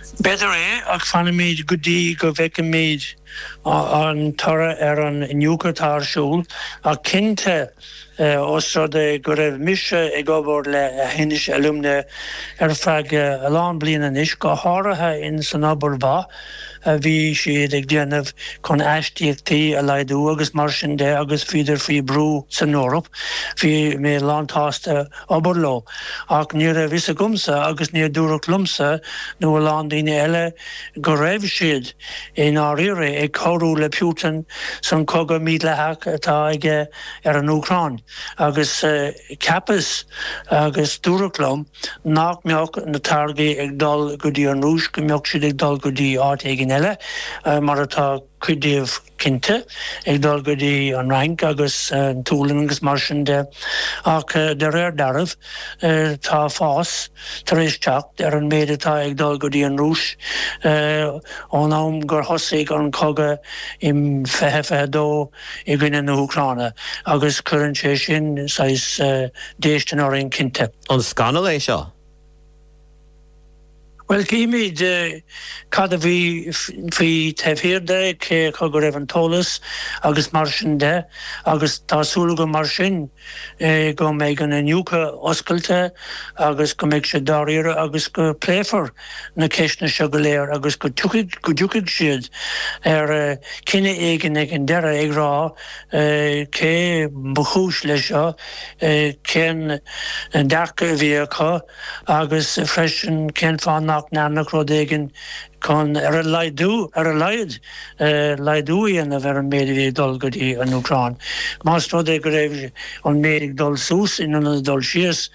B'fhéidir é, ach fanfaimid go dtí go bhfeicfimid an toradh ar an iniúchadh atá ar siúl, ach cinnte, ós rud é go raibh mise ag obair le Aughinish Alumina ar feadh a lán bliain anois, go háirithe ins an obair mhaith a bhí siad ag déanamh chun astaíochtaí a laghdú agus mar sin de agus bhíodar faoi bhrú san Eoraip, bhí mé lán-tsásta. obair leo, ach ní raibh fhios agamsa agus níor dúradh liomsa nó a lán daoine eile go raibh siad, i ndáiríre, ag cabhrú le Putin san cogadh mídhleathach atá aige ar an Úcráin, agus cheapas, agus dúradh liom, nach mbeadh na táirgí ag dul go dtí an Rúis, go mbeadh siad ag dul go dtí áit éigin eile, mar atá cuid díobh. cinnte, ag dul go dtí an Fhrainc agus an tSualainn agus mar sin de, ach de réir dealraimh, tá fás tar éis teacht ar an méid atá ag dul go dtí an Rúis ón am gur thosaigh an cogadh i 2022 i gcoinne na hÚcráine agus cuireann sé sin saghas déistin orainn cinnte. An scannal é seo? Bhuel, cífimid cad a bhí faoi taobh thiar de, cé acu go raibh an t-eolas agus mar sin de agus tá súil agam mar sin é go mbeidh an iniúchadh oscailte agus go mbeidh sé dáiríre agus go bpléifear na ceisteanna seo go léir agus go dtiocfaidh siad ar chinneadh éigin ag an deireadh ag rá Cé ba chúis leis seo? Cén dearcadh a bhí acu? Agus freisin, cén fáth nach ndearnadh rud éigin chun ar a laghdú, ar a laghad, laghdú a dhéanamh ar an méid a bhí ag dul go dtí an Úcráin? Más rud é go raibh an méid ag dul suas in ionad ag dul síos,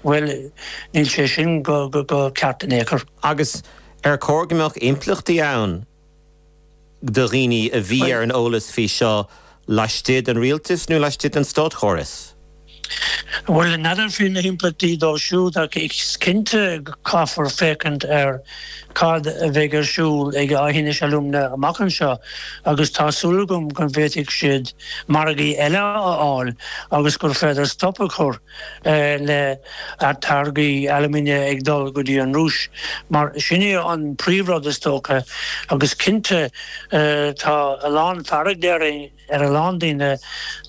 bhuel, níl sé sin go ceart in aon chor. Agus ar chóir go mbeadh impleachtaí ann? do dhaoine a bhí ar an eolas faoi seo laistigh den rialtas nó laistigh den státchóras. Bhuel, n'fheadar faoi na himpleachtaí dóibh siúd ach is cinnte go gcaithfear féachaint ar cad a bheidh ar siúl ag Aughinish Alumina amach anseo agus tá súil agam go bhféadfaidh siad margaí eile a fháil agus gur féidir stop a chur le táirgí alumina ag dul go dtí an Rúis mar sin é an príomhrud is dócha agus cinnte tá a lán fearg déarfainn ar a lán daoine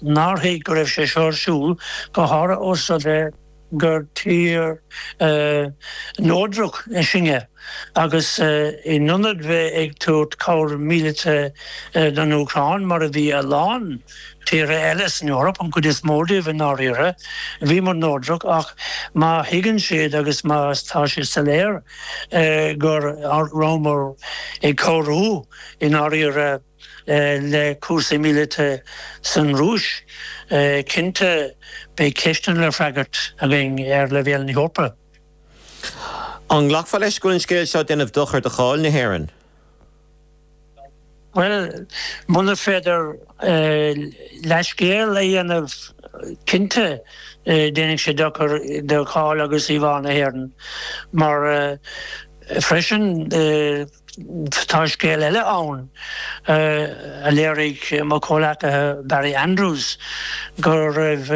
nár thuig go raibh sé seo ar siúl go háirithe ós rud é gur tír neodrach í sinne. Agus in ionad bheith ag tabhairt cabhair mhíleata don Úcráin, mar a bhí a lán tíortha eile san Eoraip, an chuid is mó díobh i ndáiríre, bhíomar neodrach. Ach má thuigeann siad agus má tá sé soiléir go rabhamar ag cabhrú i ndáiríre le cúrsaí míleata san Rúis, cinnte beidh ceisteanna le freagairt againn ar leibhéal na hEorpa. An nglacfá leis go bhfuil an scéal seo ag déanamh dochair do cháil na hÉireann? Bhuel, muna féidir leithscéal a dhéanamh, cinnte déanfaidh sé dochar do cháil agus íomhá na hÉireann mar freisin. Tá scéal eile ann a léirigh mo chomhghleacaí Barry Andrews go raibh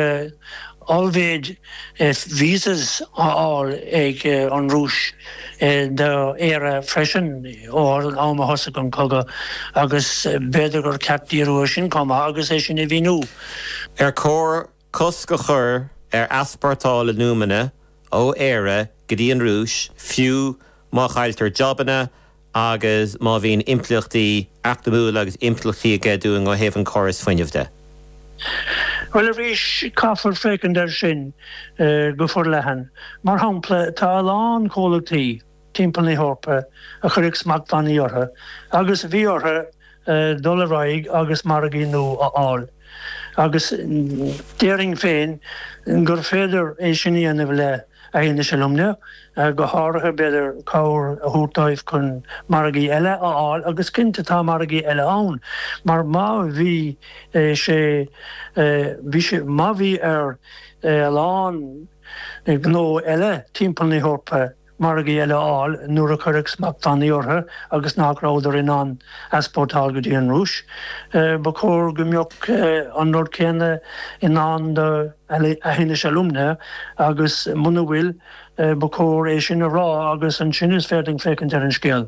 ollmhéad 'visas' á fháil ag an Rúis do Éire freisin ó an am a thosaigh an cogadh agus b'fhéidir gur ceart díriú ar sin chomh maith agus é sin a mhíniú. Ar chóir Cosc a chur ar easpórtáil alúmana ó Éire go dtí an Rúis, fiú má chailltear jabanna agus má bhíonn impleachtaí eacnamúil agus impleachtaí aige dúinn ó thaobh an córais fuinnimh de. Bhuel, arís, caithfear féachaint air sin go forleathan. Mar shampla, tá a lán comhlachtaí. timpeall na hEorpa a cuireadh smachtbhannaí orthu agus a bhí orthu dul ar aghaidh agus margaí nua a fháil agus déarfainn féin gur féidir é sin a dhéanamh le hAughinish Alumina, go háirithe b'fhéidir cabhair a thabhairt dóibh chun margaí eile a fháil agus cinnte tá margaí eile ann mar má bhí sé bhí sé má bhí ar a lán gnó eile timpeall na hEorpa margaí eile a fháil nuair a cuireadh smachtbhannaí orthu agus nach rabhadar in ann easpórtáil go dtí an Rúis. Ba chóir go mbeadh an rud céanna i ndán do Aughinish Alumina agus muna bhfuil, ba chóir é sin a rá agus ansin is féidir linn féachaint ar an scéal.